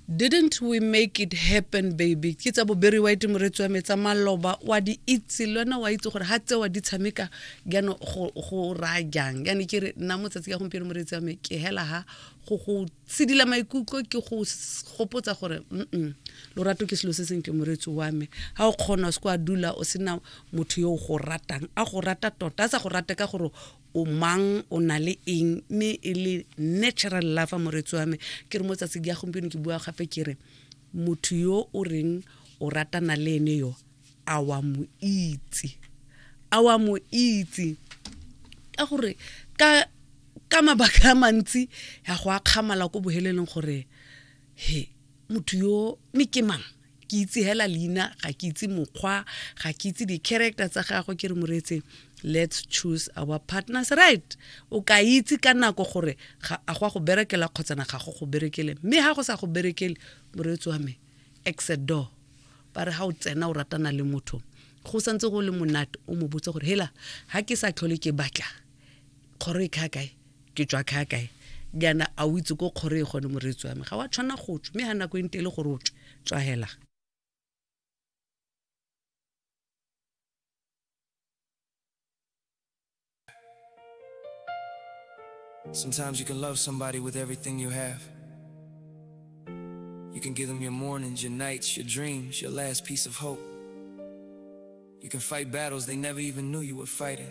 didn't we make it happen baby ke tsa boberi wa ete moretsi wa metsa maloba wa di itse le wena wa itse gore ga tsewa di tshameka jano go raya jang jane ke re nna motsatsi ka gompieno moretsi wa me ke hela ga go go tshidila maikutlo ke go gopotsa gore mm lorato ke selo se sentle moretsi wa me ga o kgona o se kwa dula o sena motho yo o go ratang a go rata tota a sa go rate ka gore o mang o na le eng mme e le natural lover moretsi wa me ke re mo tsatsi ke ya gompieno ke bua gape ke re motho yo o reng o ratana le ene yo a wa mo itse a wa mo itse ka gore ka ka mabaka a mantsi ya go akgamala ko boheleleng gore he motho yo mme ke mang ke itse hela leina ga ke itse mokgwa ga ke itse di-character tsa gagwe ke re moreetseng let's choose our partners right o ka itse ka nako gore a go a go berekela kgotsana ga go go berekele mme ga go sa go berekele moreetsi wa me exit door ba re ga o tsena o ratana le motho go santse go le monate o mo botse gore hela ga ke sa tlhole ke batla kgoro e kgakae ke tswa tlhaa kae jaana a o itse ko kgore e gone moreetsi wa me ga wa tshwana go tswa mme ga nako e nte e le gore o tswe tswa hela Sometimes you can love somebody with everything you have. You can give them your mornings, your nights, your dreams, your last piece of hope. You can fight battles they never even knew you were fighting.